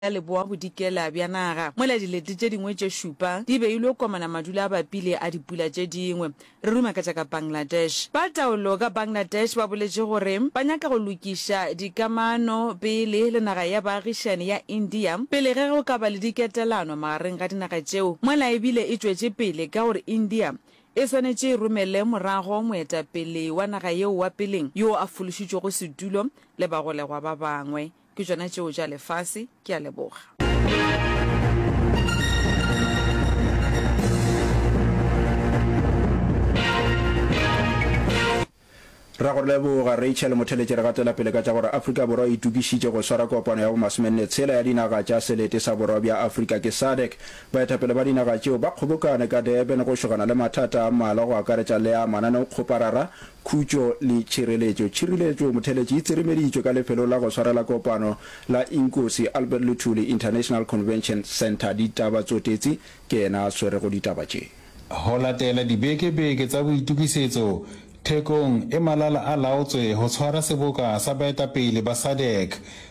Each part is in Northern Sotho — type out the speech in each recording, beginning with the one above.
ya leboa-bodikela bja naga, mola dilete tše dingwe tše šupa di beilwe komana madula a bapile a dipula tše dingwe. Re ruma ka tša ka Bangladesh. Ba taolo ka Bangladesh ba boletše gore ba nyaka go lokiša dikamano pele le naga ya baagišani ya India pele ge go ka ba le diketelano magareng ga dinaga tšeo, mola e bile e tšwetše pele ka gore India e swanetše e romele morago moetapele wa naga yeo wa peleng yoo a fološitšwego setulo le bagolegwa ba bangwe. Ke tšona tšeo tša lefase. Ke a leboga. Re a go leboga, Rachel Motheletše. Re gatela pele ka tša gore Afrika Borwa e itokišitše go swara kopano ya bomasomenne tshela ya dinaga tša selete sa borwa bja Afrika ke SADC. Baetapele ba dinaga tšeo ba kgobokane ka Durban go šogana le mathata a mmalwa go akaretša le a mananeokgoparara, Khutšo le Tšhireletšo Tšhiriletšo Motheletši e tserimeditšwe ka lefelo la go swarela kopano la Inkosi Albert Luthuli International Convention Centre Ditaba Tsotetsi ke yena a swerego ditaba tše. Go latela dibeke-beke tsa boitokisetso, Thekong e malala-a-laotswe go tshwara seboka sa baetapele ba SADC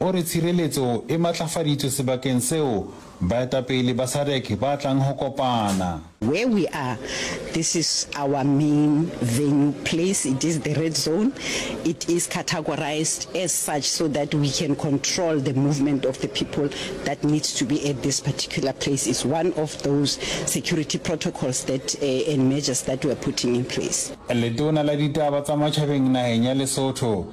O re tshireletso e matlafaditšwe sebakeng seo baetapele ba Sadc ba tlang go kopana. Where we are, this is our main venue place, it is the red zone, it is categorized as such so that we can control the movement of the people that needs to be at this particular place, it's one of those security protocols that and measures that we are putting in place. Letona la Ditaba tsa Matšhabeng nageng ya Lesotho,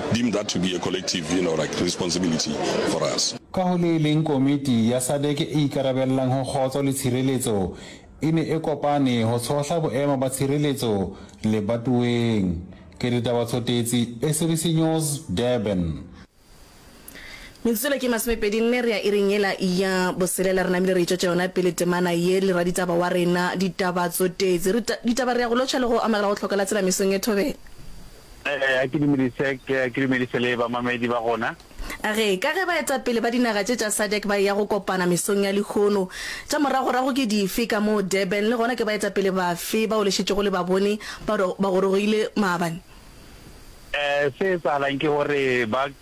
deem that to be a collective you know, like responsibility for us. Ka ho le leng Komiti ya Sadc e Ikarabellang ho Kgotso le Tshireletso e ne e kopane ho tshohla boemo ba tshireletso lebatoweng. Ke Ditaba Tshotetsi, SABC News, Durban. Metsotso yela ke masomepedi nne re ya iring yela ya boselela, re namile re itšwetša yona pele temana ye le raditaba wa rena. Ditaba Tsotetsi, re ditaba re ya go lotšha le go amogela go hlokela tsela mesong ye thobela. Ee, a ke dumedise, ke a ke dumedise le bamamedi ba gona. A re, ka ge baetapele ba dinaga tše tša sadc ba eya go kopana mesong ya lehono, tša moragorago ke dife ka moo Durban, le gona ke baetapele bafe bao le šetšego le ba bone ba gorogile maabane? Ee, se etsahalang ke gore ba.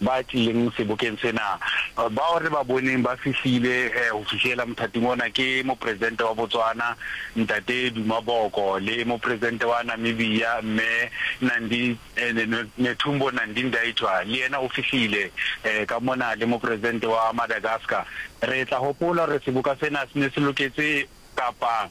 ba tlileng sebokeng sena. Bao re ba boneng ba fihlile go fihlela mothating ona ke Mopresidente wa Botswana, Ntate Duma Boko, le Mopresidente wa Namibia, Mme Nandi, Netumbo Nandi-Ndaitwah, le yena o fihlile ka mona, le Mopresidente wa Madagascar. Re tla gopola gore seboka sena se ne se loketse kapa.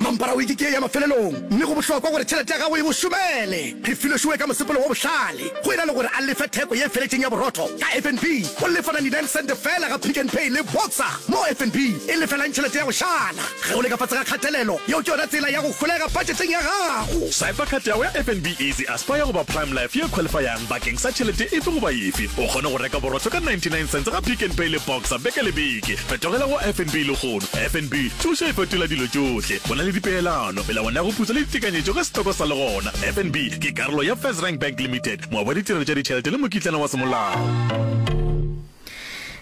Mampara o ikikee ya mafelelong, mme go bohlokwa gore tšhelete ya gago e mo šomele. Re filwe Sue ka mosepelo wo bohlale. Go e na le gore a lefe theko ye feletšeng ya borotho ka FNB, o lefa 99 sente feela ga Pick n Pay le Boxer, moo FNB e lefelang tšhelete ya go šala. Ge o le ka fase ga kgatelelo, yeo ke yona tsela ya go holega budgeteng ya gago. Swiper card ya go ya FNB Easy Aspire goba Prime Life ye qualifyang bakeng sa tšhelete efe goba efe. O kgone go reka borotho ka 99 sente ga Pick n Pay le Boxer beke le beke. Fetogela go FNB le go. Lehono, FNB, thušo e fetola dilo tšohle. Go na le dipeelano, melawana ya go putsa le ditekanyetšo ge setoko sa le gona. FNB ke karolo ya FirstRand Bank Limited, moabi wa ditirelo tša ditšhelete le mokitlana wa semolao.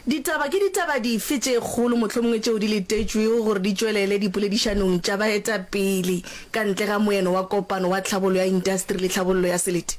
Ditaba Ke ditaba dife tše kgolo mohlomongwe tšeo di letetšwego gore di tšwelele dipoledišanong tša baetapele ka ntle ga moeno wa Kopano wa Tlhabollo ya Intasteri le Tlhabollo ya Selete?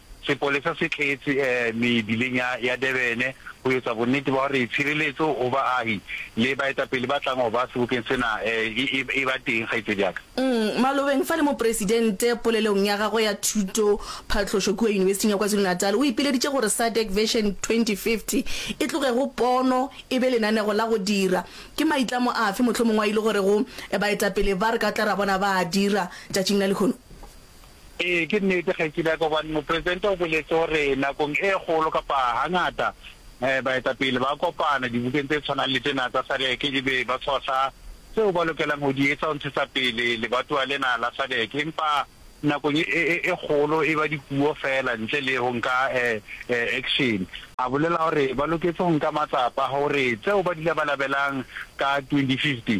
Sepolesa se tletse mebileng ya ya Durban ho etsa bonnete ba hore tshireletso ho baahi le baetapele ba tlang ho ba sebokeng sena e e ba teng, kgaitsedi ya ka. Malobeng fa le Mopresidente polelong ya gagwe ya thuto phatlošo kua Yunibesiting ya KwaZulu-Natal, o ipileditše gore SADC Vision 2050 e tloge go pono e be lenanego la go dira. Ke maitlamo afe mohlomongwa e le gore go baetapele ba re ka tla ra bona ba a dira tšatšing la lehono? Ee, ke nnete, Kgaetšedi ya ka, gobane Mopresidente o boletše gore nakong e kgolo, kapa gangata, baetapele ba kopana dibokeng tše tshwanang le tšena tsa SADC e be ba tshohla tseo ba lokelang go di etša go ntshetsa pele lebatowa lena la SADC. Empa nakong e, e, e kgolo e ba dipuo feela ntle le go nka action. A bolela gore ba loketše go nka matsapa gore tseo ba di labalabelang ka 2015,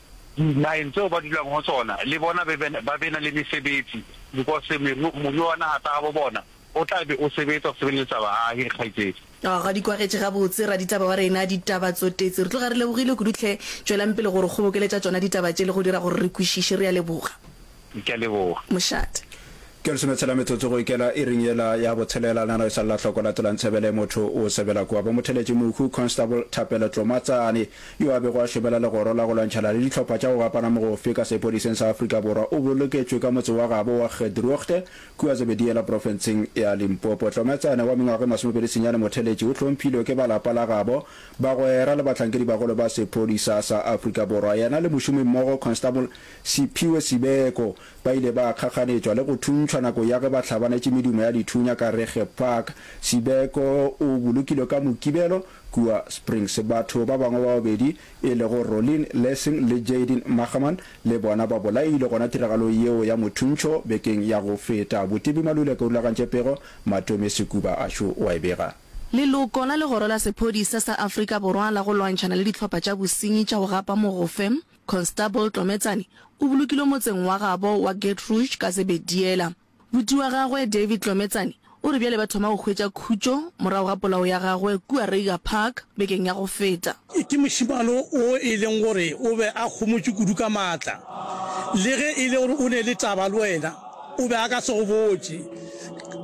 Dinageng tseo ba dulago go tsona le bona ba be na le mesebetsi because moruo wa naga tsa gabo bona o tla be o sebetsa go sebeletsa baagi. Kgaitsedi. Ga di kwagetše gabotse raditaba wa rena, ditaba tsotetse. Re tloga re lebogile kudu tlhe. Tšwelang pele go re kgobokeletša tšona ditaba tše le go dira gore re kwišiše. Re a leboga. Ke a leboga. Mošate. Ke lesome tshela metsotso go ikela iring yela ya botshelela. Nana o sa lla hloko latelang Ntsebele motho o sebela kua bo Motheletše Mohu, Constable Thapelo Tlomatsane, yo a bego a šobela legoro la go lwantšhana le dihlopha tša go gapana mogofe ka sepodiseng sa Afrika Borwa o boloketšwe ka motse wa gabo wa Gedroogte kua Zebediela profenseng ya Limpopo. Tlomatsane wa mengwaga e masomepedi senyane Motheletše o hlomphilwe ke ba lapa la gabo, bagwera le bahlankedi bagolo ba sepodisa sa Afrika Borwa. Yena le mošomimmogo Constable Sephiwe Sibeko, ba ile ba kgakganetšwa le go thuntšhwa nako ya ge ba hlabanetše medumo ya dithunya ka Reggae Park. Sibeko o bolokilwe ka Mokibelo kua Springs. Batho ba bangwe ba babedi e lego Rollin Lessing le Jaydin Machaman le bona ba bolailwe gona tiragalong yeo ya mothuntšho bekeng ya go feta. Botebi Maluleke o rulagantše pego, Matome Sekuba a šo o a e bega. Leloko la Legoro la Sephodisa sa Afrika Borwa la go Lwantšhana le Dihlopha tša Bosenyi tša go Gapa Mogofe, Constable Tlometsane o bolokilwe motseng wa gabo wa Geetrouge ka sebediela. Buti wa gagwe David Tlometsane o re bjale ba thoma go hwetša khutšo morago ga polao ya gagwe kua Reiger Park bekeng ya go feta. Ke mošemane o e leng gore o be a kgomotše kudu ka maatla. Le ge e le gore o ne le taba le wena, o be a ka se go botše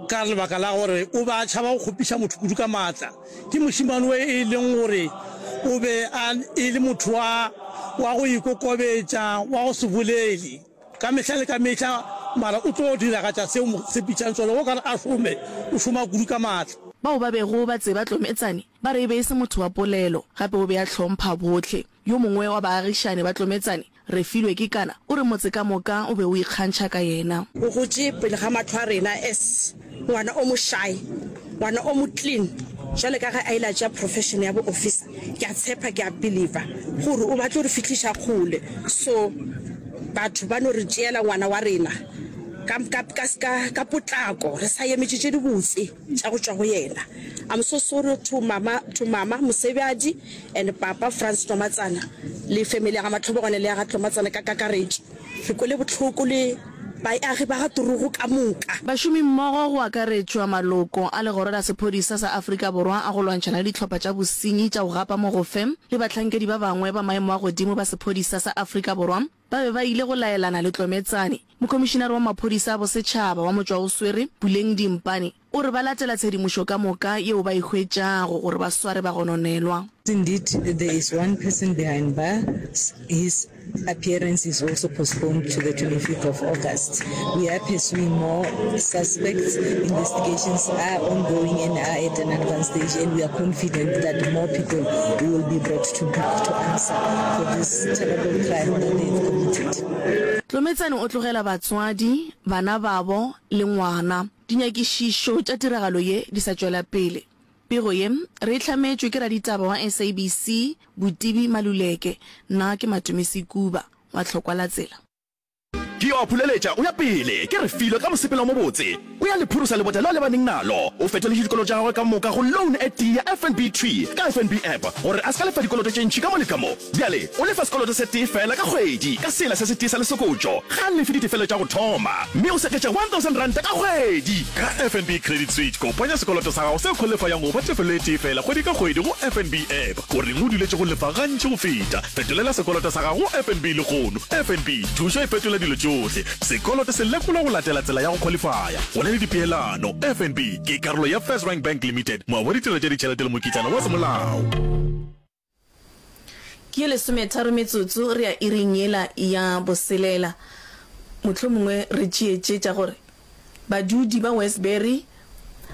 ka lebaka la gore o be a tšhaba go kgopiša motho kudu ka maatla. Ke mošemane yo e leng gore o be a e le motho wa, wa go ikokobetša, wa go se bolele ka mehla le ka mehla, mara o tlo diragatša seo mo tshepišang sona. O ka re a šome, o šoma kudu ka maatla. Bao ba bego ba tseba Tlometsane ba re e be e se motho wa polelo, gape o be a hlompha bohle. Yo mongwe wa baagišani ba Tlometsane, Refilwe Kekana, o re motse ka moka o be o ikgantšha ka yena. O gotše pele ga mahlo a rena as ngwana o mošae, ngwana o mo clean. Jwale ka ge a ile a tšea profession ya bo officer, ke a tshepa, ke a believer gore o batlo re fihliša kgole. So batho ba no re tšeela ngwana wa rena ka, ka, ka, ka, ka potlako re sa emetše tše dibotse tša go tšwa go yena. I'm so sorry to mama, to mama Mosebjadi. And papa Frans Tlomatsana le family ya ga Matlhobogwane le ya ga Tlomatsana ka kakaretšo re kwele bohloko le baeagi ba ga Turugo ka moka. Bašomimmogo go akaretšwa maloko a Legoro la Sephodisa sa Afrika Borwa a go Lwantšhana le Dihlopha tša Bosenyi tša go Gapa Mogofe le bahlankedi ba bangwe ba maemo a godimo ba sephodisa sa Afrika Borwa ba be ba ile go laelana le Tlometsane. Mokhomišinare wa Maphodisa a Bosetšhaba wa Motšwaoswere, Buleng Dimpane, O re ba latela tshedimošo ka moka yeo ba e hwetšago gore ba sware bagononelwa. Indeed, there is one person behind bars, his appearance is also postponed to the 25th of August. We are pursuing more suspects, investigations are ongoing and are at an advanced stage and we are confident that more people will be brought to book to answer for this terrible crime that they have committed. Tlometsane o tlogela batswadi, bana babo le ngwana. Dinyakišišo tša tiragalo ye di sa tšwela pele. Pego ye re e hlametšwe ke raditaba wa SABC, Botibi Maluleke, nna ke Matumisi Kuba wa Tlhokwalatsela. Ke yo a phuleletša, o ya pele, ke re filo ka mosepelo o mobotse. O ya le phurusa lebota le a lebaneng nalo. O fetoletše dikoloto tša gagwe ka moka go loan e tee ya FNB Tree ka FNB App gore a se ka lefa dikoloto tše ntši ka mo le ka mo. Bjale, O lefa sekoloto se tee feela ka kgwedi ka sela se se tee sa lesokotšo. Ga a lefe ditefelo tša go thoma, mme o seketša R1,000 ka kgwedi. Ka FNB Credit Suite, kopanya sekoloto sa gago se kholefayang go ba tefelo e tee feela kgwedi ka kgwedi go FNB app. O reng o duletše go lefa gantši go feta? Fetolela sekoloto sa gago go FNB lehono. FNB, thušo e fetola dilo tšohle. Sekoloto se lekolwa go latela tsela ya go kholefaya. Go na le dipeelano. FNB ke karolo ya FirstRand Bank Limited, moabi wa ditirelo tša ditšhelete le mokitlana wa semolao. Ke ye lesometharo metsotso re ya iring yela ya boselela. Mohlomongwe re tšee tše tša gore badudi ba Westbury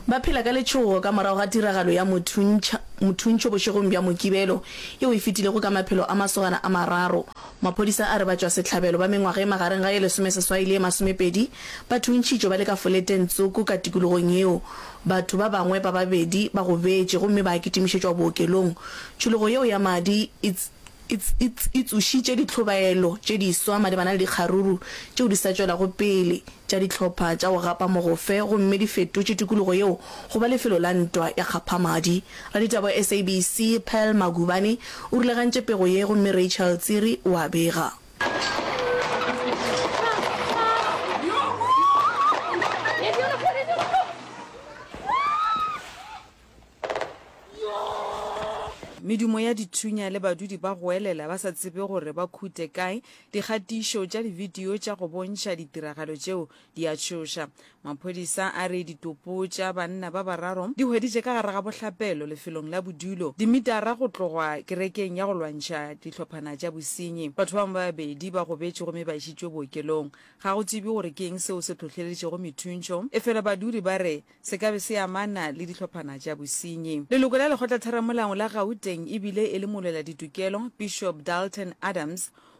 ba phela ka letšhogo ka morago ga tiragalo ya mothuntšho bošegong bja Mokibelo yeo e fetilego ka maphelo a masogana a mararo Maphodisa a re batšwasehlabelo ba mengwaga e magareng ga e lesomeseswai le e masomepedi ba thuntšhitšwe ba le ka foleteng tsoko ka tikologong yeo. Batho ba bangwe ba babedi ba gobetše gomme ba kitimišetšwa bookelong. Tšhologo yeo ya madi e tsošitše ditlhobaelo tše diswa malebana le dikgaruru tšeo di sa tšwelago pele tša dihlopha tša go gapa mogofe gomme di fetotše tikologo yeo go ba lefelo la ntwa ya kgaphamadi. Raditaba wa SABC, Pearl Magubane, o rulagantše pego ye gomme Rachel Tsiri o a bega. Medumo ya dithunya le badudi ba goelela ba sa tsebe gore ba khute kae, dikgatišo tša dibidio tša go bontšha ditiragalo tšeo di a tšhoša. Maphodisa a re ditopo tša banna ba bararo di hweditše ka gare ga bohlapelo lefelong la bodulo, dimitara go tlogwa kerekeng ya go lwantšha dihlophana tša bosenyi. Batho ba bangwe ba babedi ba gobetše gomme ba išitšwe bookelong. Ga go tsebje gore ke eng seo se hlohleleditšego methuntšo, efela badudi ba re se ka be se amana le dihlophana tša bosenyi. Leloko la Lekgotlatheramolao la Gauteng e bile e le molwela ditokelo, Bishop Dalton Adams,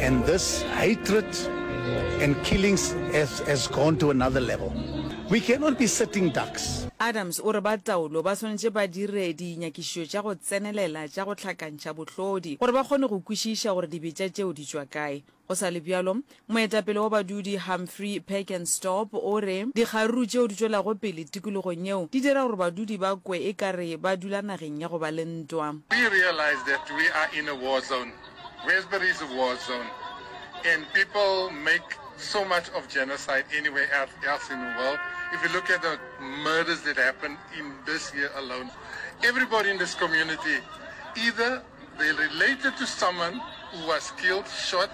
And this hatred and killings has, has gone to another level. We cannot be sitting ducks. Adams o re ba taolo ba swanetše ba dire dinyakišišo tša go tsenelela tša go hlakantšha bohlodi gore ba kgone go kwešiša gore dibetša tšeo di tšwa kae. Go sa le bjalo, Moetapele wa badudi Humphrey Packenstop o re, Dikgaruru tšeo di tšwelago pele tikologong yeo di dira gore badudi ba kwe e ka re ba dula nageng ya go ba le ntwa. We realize that we are in a war zone, Westbury is a war zone and people make so much of genocide anywhere else in the world. If you look at the murders that happened in this year alone, everybody in this community either. They related to someone who was killed, shot,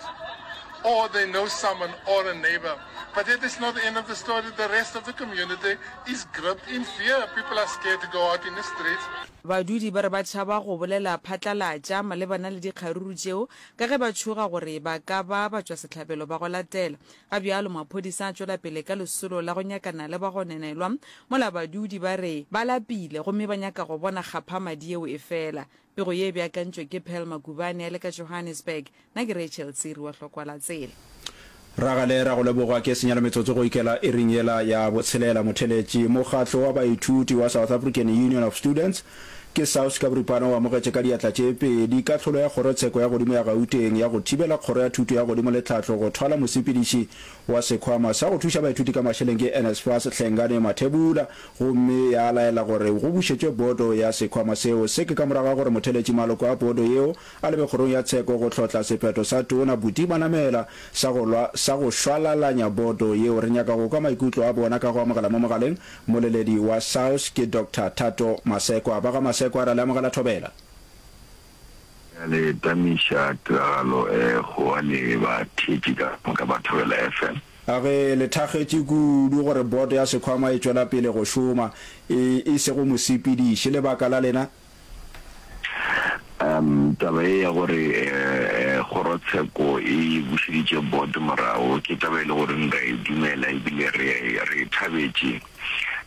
or they know someone or a neighbor. But that is not the end of the story. The rest of the community is gripped in fear. People are scared to go out in the streets. Badudi ba re ba tšhaba go bolela phatlalatša malebana le dikgaruru tšeo ka ge ba tšhoga gore ba ka ba batšwasehlabelo ba go latela. Ga bjalo maphodisa a tšwela pele ka lesolo la go nyakana le bagonenelwa mola badudi ba re ba lapile gomme ba nyaka go bona kgaphamadi yeo e fela. Pego ye e beakantšwe ke Pearl Magubane a le ka Johannesburg. Na ke Rachel Tsiri wa Hlokwalatseele. Ragale ra go leboga ke senyela metsotso go ikela iring yela ya botshelela. Motheletši, Mokgatlo wa baithuti wa South African Union of Students, ke SAUS ka boripana o amogetše ka diatla tše pedi kahlolo ya Kgorotsheko ya Godimo ya Gauteng ya go thibela Kgoro ya Thuto ya Godimo le Tlhahlo go thwala mosepediši wa Sekhwama sa go Thuša Baithuti ka Mašeleng ke NSFAS Hlengane Mathebula gomme ya laela gore go bušetšwe boto ya sekhwama seo. Se ke ka morago ga gore motheletši maloko a boto yeo a lebe kgorong ya tsheko go hlotla sephetho sa Tona Buti Manamela sa go lwa sa go šwalalanya boto yeo. Re nyaka go kwa maikutlo a bona ka go amogela mo mogaleng moleledi wa SAUS ke Doctor Thato Masekwa. Ba ga Masekwa ra le amogela thobela. Re a le tamiša tiragalo e kgowa le bathetši ka moka ba Thobela FM. A Re le thakgetše kudu gore boto ya sekhwama e tšwela pele go šoma e e sego mosepediši. Lebaka la lena? A Taba ye ya gore kgorotsheko e bušeditše boto morago ke taba e le goreng re a e dumela e bile re e thabetše.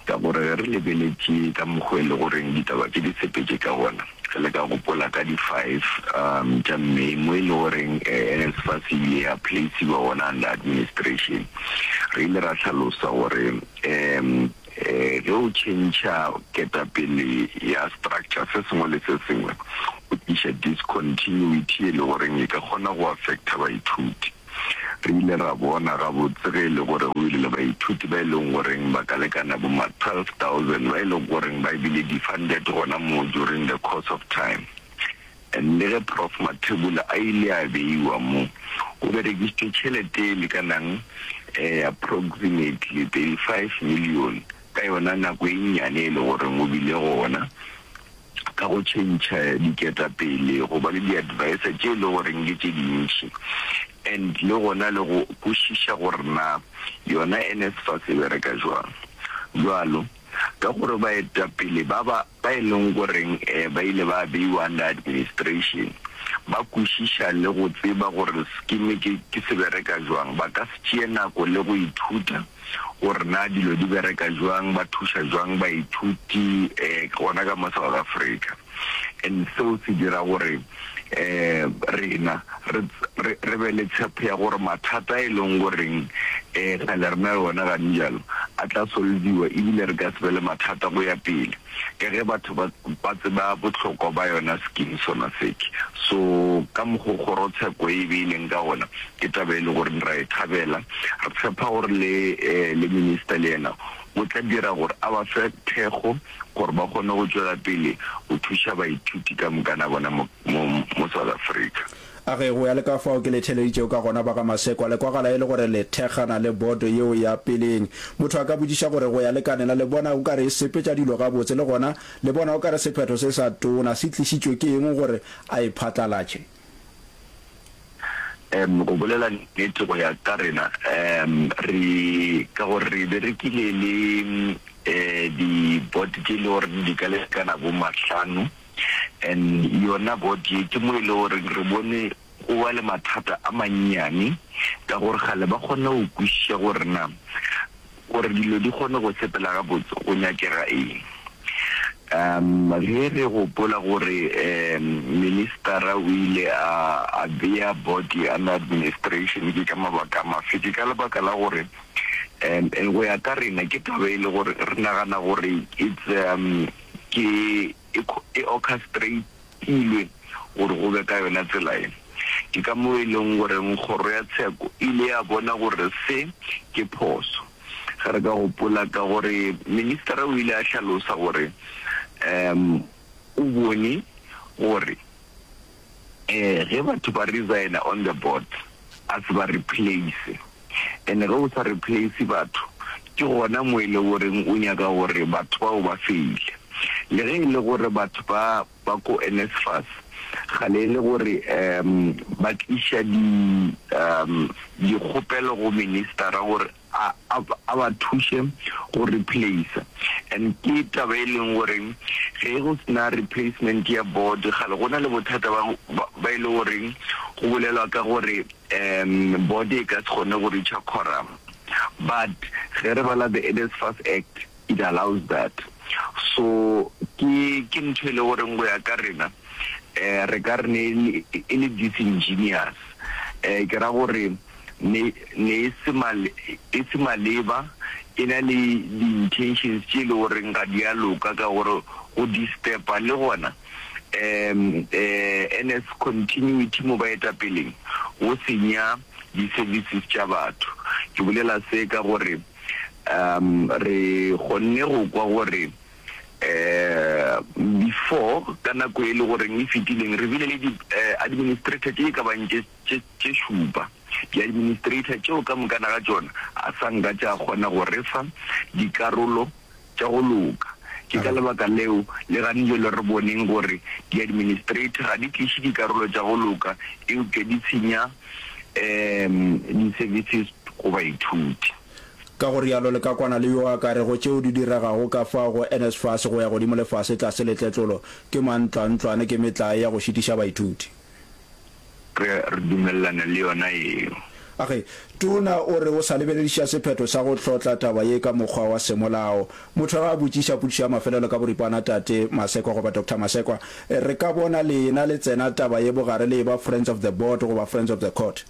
Ka gore ge re lebeletše ka mokgo e lego goreng ditaba tše di sepetše ka gona, re le ka gopola ka di five tša May mo e lego goreng NSFAS e ile ya placiwa gona under administration. Re ile ra hlalosa gore ge o tšhentšha ketapele ya structure se sengwe le se sengwe o tliša discontinuity e lego goreng e ka kgona go affecta baithuti. Re ile ra bona gabotse ge e le gore go bile le baithuti ba e leng goreng ba ka lekana boma 12,000 ba e lego goreng ba bile defunded gona moo during the course of time. And le ge Prof Mathebula a ile a beiwa mo, go berekisitšwe tšhelete e lekanang eh approximately 35 million ka yona nako e nnyane e le goreng o bile gona. ka go tšhentšha diketapele, go ba le di-advisor tše e le goreng ke tše dintši and le gona le go kwešiša gore na yona NSFAS e bereka jwang. Bjalo ka gore baetapele ba ba ba e leng goreng ba ile ba beiwa under administration ba kwešiša le go tseba gore sekime ke ke se bereka jwang, ba ka se tšee nako le go ithuta. gore na dilo di bereka jwang, ba thuša jwang baithuti um gona ka mo South Africa. And seo se dira gore um rena re re re be le tshepho ya gore mathata a e leng goreng um kgale re na le one ganijalo a tla solviwa ebile re ka se be le mathata go ya pele. ka ge batho ba ba tseba bohlokwa ba yona scheme sona sec so ka mokgo kgorotsheko e e beileng ka gona ke taba e le gore ra e thabela re tshepa gore le le minister le yena o tla dira gore a ba fe thekgo gore ba kgone go tšwela pele go thuša baithuti ka mokana bona mo mo South Africa. A ge go ya le ka fao ke le theeleditšego ka gona, ba ga Masekwa, le kwagala e le gore le thekgana le boto yeo ya peleng. Motho a ka botšiša gore go ya le ka nena le bona o ka re e sepetša dilo gabotse, le gona le bona o ka re sephetho se sa tona se tlišitšwe ke eng gore a e phatlalatše. Em, go bolela nnete, go ya ka rena, em, re, ka gore re berekile le, eh, di-board tše e le gore di ka lekana bo mahlano, and yona God ye ke mo e le goreng re bone go ba le mathata a mannyane ka gore kgale ba kgona go kwešiša gore na gore dilo di kgone go sepela gabotse go nyakega eng. Um ge re gopola gore um ministera o ile a a bea body under administration ke ka mabaka a mafe ke ka lebaka la gore um go ya ka rena ke taba e le gore re nagana gore it's um ke e e orchestrate-ilwe gore go be ka yona tsela ye. Ke ka moo e leng goreng Kgoro ya Tsheko e ile ya bona gore se ke phoso. Ge re ka gopola ka gore ministera o ile a hlalosa gore um o bone gore. Eh ge batho ba resigner on the board a se ba replace and ge o sa replace batho ke gona mo e le goreng o nyaka gore batho bao ba feile le ge e le gore batho ba ba ko NSFAS kgale e le gore um ba tliša di um dikgopelo go minister gore a a a ba thuše go replacer and ke taba e leng gore ge go sena replacement ya board kgale go na le bothata ba ba ba e le gore go bolelwa ka gore um board e ka se kgone go reacher quorum but ge re bala the Earnest Fast Act It allows that. So ke, ke ntho e le goreng go ya ka rena um re ka re ne e le, e le disingenuous. Um ke ra gore ne, ne e se ma, e se maleba, e na le di-intentions tše e le goreng ga di a loka ka gore go disturb-a le gona um NS continuity mo baetapeleng, go senya di-services tša batho. Ke bolela se ka gore. Um, re kgonne go kwa gore, um, before, ka nako e le goreng e fetileng, re bile le di, uh, administrator tše e ka bang tše, tše, tše šupa. Di-administrator tšeo ka moka na ga tšona a sa nka tša kgona go re fa dikarolo tša go loka. Ke ka lebaka leo, le ganile le re boneng gore di-administrator ga di tliše dikarolo tša go loka eupša di senya um di-services go baithuti. Ka go realo le ka kwana le yo a ka rego tšeo di diregago ka fao go NSFAS go ya godimo le fase tlase le tletlolo ke mantlwantlwane ke metlae ya go šitiša baithuti. Re a dumelelana le yona yeo. Age, Tona o re o sa lebelediša sephetho sa go hlotla taba ye ka mokgwa wa semolao. Motho ge a botšiša potšišo ya mafelelo ka boripana Tate Masekwa goba Doctor Masekwa, re ka bona lena le tsena taba ye bogare le eba Friends of the Board goba Friends of the Court.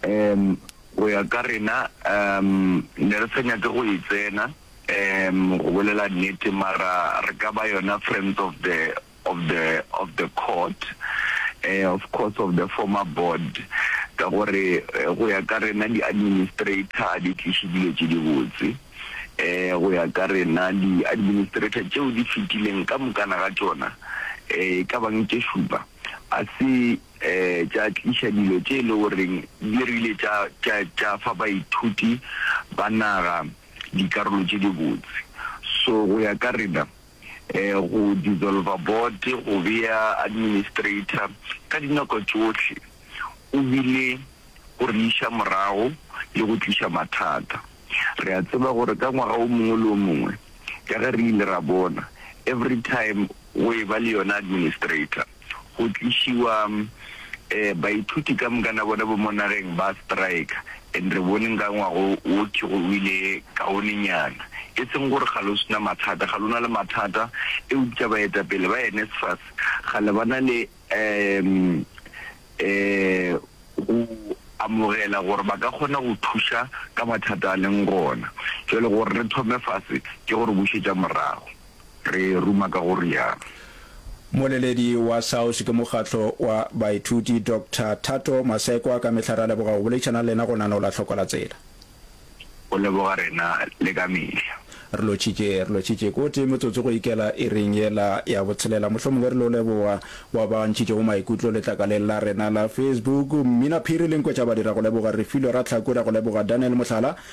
Um, go ya ka rena, um, ne re sa nyake go e tsena, um, go bolela nnete, mara re ka ba yona Friends of the of the of the court eh of course of the former board ka gore go ya ka rena di administrator a di tliše dilo tše di botse eh go ya ka rena di administrator tšeo di fetileng ka mokana ga tšona eh e ka bang tše šupa a se eh tša tliša dilo tše e le goreng di rile tša tša tša fa baithuti ba naga dikarolo tše di botse so go ya ka rena go dissolver board, go bea administrator, ka dinako tšohle o bile go re iša morago le go tliša mathata. Re a tseba gore ka ngwaga o mongwe le o mongwe, ka ge re ile ra bona, every time go e ba le yona administrator. go tlišiwa baithuti ka moka na bona bo mo nageng ba strika and re bone nka ngwago wo ke go wile kaonenyana e seng gore ga lo sna mathata ga lona le mathata eupša baetapele ba NSFAS ga le bana le um go amogela gore ba ka kgona go thuša ka mathata a leng gona jwale gore re thome fase ke gore bušetša morago. re ruma ka go rialo. Moleledi wa SAUS ke mokgatlo wa baithuti Doctor Thato Masekwa. Ka mehla re a leboga go boledišana le lena go nanola hloko la tsela. O leboga rena le ka mehla. Re lotšhitše, re lotšhitše kotee metsotso go ikela iring yela ya botshelela. Mohlomongwe re lo leboga bao ba ntšhitšego maikutlo letlakaleng la rena la Facebook. Mmina Phiri le Nkwetša Badi ra go leboga. Refilwe Ratlhaku ra go leboga. Daniel Mohlala.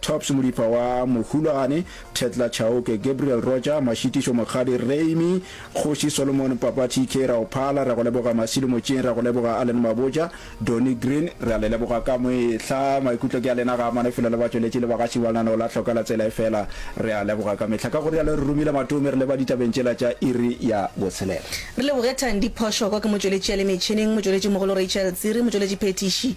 Tops Modipa wa Mohulwane, Thetla Chauke, Gabriel Roja, Mashitišo Mokgadi, Reimi, Kgoši Solomon, Papa TK, ra o phala, ra go leboga Masilo Motšeng, ra go leboga Allen Maboja, Donny Green, re a le leboga ka mehla, maikutlo ke a lena ga a mane felo le batšweletši le bagaši ba lenaneo la Hlokela Tsela Efela, re a leboga ka mehla. Ka go rialo re romile matome re leba ditabeng tšela tša iri ya botshelela. Re leboge Thandi Phoshoko ke motšweletši a le metšhineng, motšweletši mogolo Rachel Tsiri, motšweletši phethiši